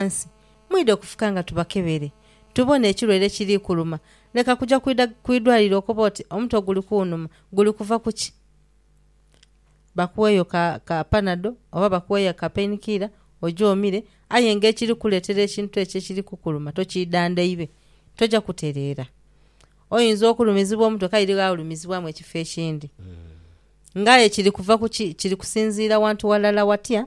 ghansi, mwidha okufuka nga tubakebere tubone ekirwaire ekiri kuluma. Leka kuja kwidha ku idwaliro okobe oti omutwe guli kunhuma, guli kuva ku ki? Bakuweeyo ka Panado oba bakuweeyo ka Pain Killer oje omire aye ng'ekiri kukuleetera ekintu ekyo ekiri kukuluma tokiidhandhaibe, toja kutereera. Oyinza okulumizibwa omutwe kaire ghaolumizibwamu ekifo ekindi. Ng'aye kiri kuva ku ki? Kiri kusinziira wantu walala watya?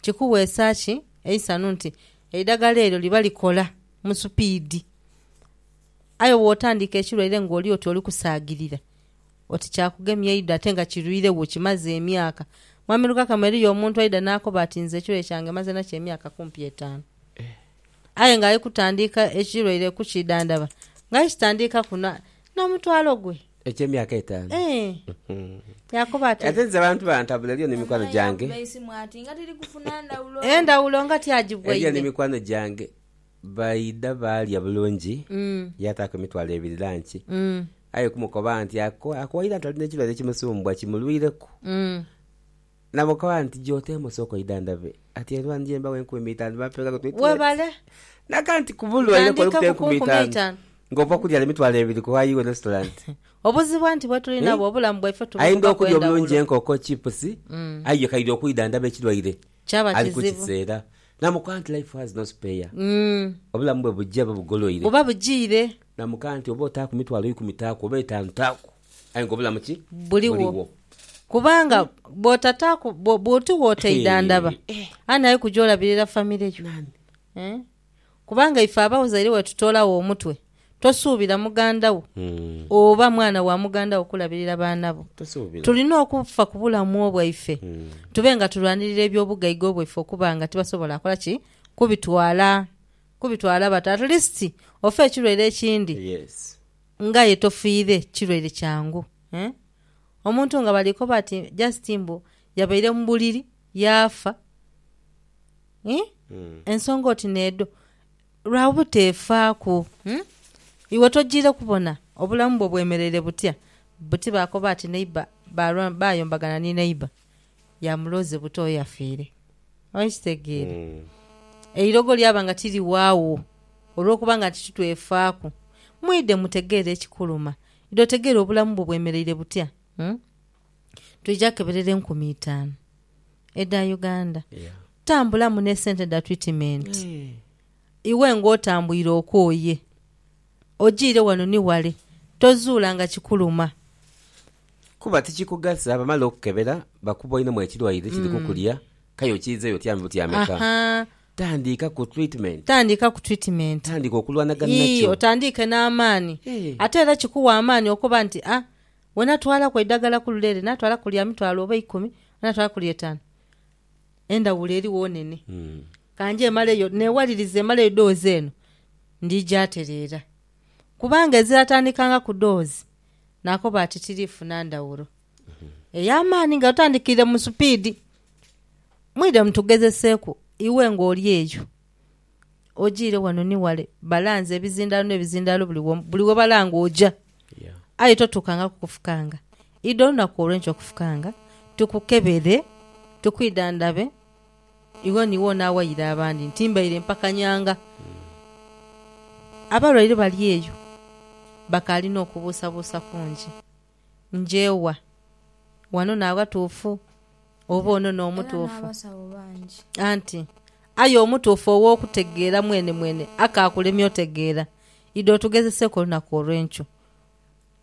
Kikuweesa ki eisanhu nti eidagala eryo liba likola mu supiidi, aye bw'otandiika ekirwaire ng'oli oti oli kusaagirira oti kyakugemya eidho ate nga kirwiregho kimaze emyaka? Mwami Lukakamwe, eriyo omuntu aidha n'akoba ati nze ekirwaire kyange maze nakyo emyaka kumpi etaanu. Aye ng'ali kutandiika ekirwaire kukidhandhaba, ng'ali kitandiika kunhwa n'omutwalo gwe. Eky'emyaka etaanu. Ee. Yaakoba ati. Ate nze abantu bantabula eriyo ni mikwano gyange. Endhawulo nga ti agibwaire. Eriyo ni mikwano gyange baidha baalya bulungi, yaataaku emitwalo ebiri lanki. Aye kumukoba nti ako waidha nti ali n'ekirwaire ekimusumbwa kimulwireku. Namukoba nti, Gy'oteema osooke oidhandhabe. Ati, Endhuba ndije mbawe enkumi eitaanu bampe nga kotwitwire. N'aka nti, Ku bulwaire kw'olukuta enkumi eitaanu ng'ova kulya n'emitwalo ebiri ku ayi iwe n'ositula nti. Obuzibu anti bwe tuli nabwo obulamu bwaife tubuvuga ku endhawulo. Aidha okulya obulungi enkoko, chipusi, aye kaidha okwidhandhaba ekirwaire ali ku kiseera. Namukoba nti, Life has no spare. Obulamu bwe bujia oba bugoloire. Buba bujiire. Namukoba nti, Oba otaaku mitwalo ikumi taaku, oba etaanu taaku. Aye nga obulamu ki? Buligho. Kubanga bw'otataaku, bwo- bw'oti w'otaidhandhaba, ani ali kuja olabirira famire yo? Nani? Eh? Kubanga ife abazaire bwe tutoolagho omutwe, tosuubira muganda wo Mm. oba mwana wa muganda wo kulabirira baana bo. Tosuubira. Tulina okufa ku bulamu bwaife Mm. tube nga tulwanirira eby'obugaiga bwaife okuba nga tibasobola kola ki? Kubitwala. Kubitwala bata. At least ofe ekirwaire ekindi. Yes. Ngaye tofiire kirwaire kyangu eh. Omuntu nga bali koba ati just mbu yabaire mu buliri yaafa eh. Ensonga oti n'edho lwa buteefaaku eh. Iwe tojiire kubona obulamu bwo bwemereire butya? Buti baakoba ati neighbour baayombagana ni neighbour. ya muloze buto eyafiire. Okitegeera? Eirogo lyaba nga tiriwaagho olw'okuba nga nti titwefaaku. Mwidhe mutegeere ekikuluma. Idha otegeere obulamu bwo bwemereire butya. Twija keberera enkumi itaanu edha Uganda. Tambulamu n'esente dha twitimenti. Iwe ng'otambwire okooye, ojiire wano ni wale, tozuula nga kikuluma. Kuba tikikugasa bamala okukebera bakuboinemu ekirwaire kiri kukulya kaya okiizeyo otya mu buti ameka? Tandiika ku treatment. Tandiika ku treatment. Tandiika okulwanagana nakyo. Yii otandiike n'amaani. Ate era kikuwa amaani okuba nti a we natwalaku eidagala ku lule ere natwalaku lya mitwalo oba eikumi oba natwalaku lya etaanu, endhawulo erigho nene. Ka nje maleyo neewalirize maleyo doozi eno, ndija tereera. Kubanga eziratandikangaku doozi naakoba ati tiriifuna ndhawulo ey'amaani nga tutandikiire mu supiidi. Mwidhe mutugezeseeku, iwe ng'oli eyo ojiire wano ni wale, balanze ebizindaalo n'ebizindaalo buli womu, buli we balanga oja, aye totuukangaku kufukanga. Idha olunaku olw'enkya okufukanga, tukukebere, tukwidhandhabe. Iwo ni wo naawaire abandi nti mbaire mpakanyanga. Abalwaire bali eyo bakaali n'okubuusabuusa kungi. Nje wa? Wano n'aghatuufu, oba ono n'omutuufu? Anti aye omutuufu ow'okutegeera mwenemwene akaakulemye otegeera. Idha otugezeseeku olunaku olw'enkyo.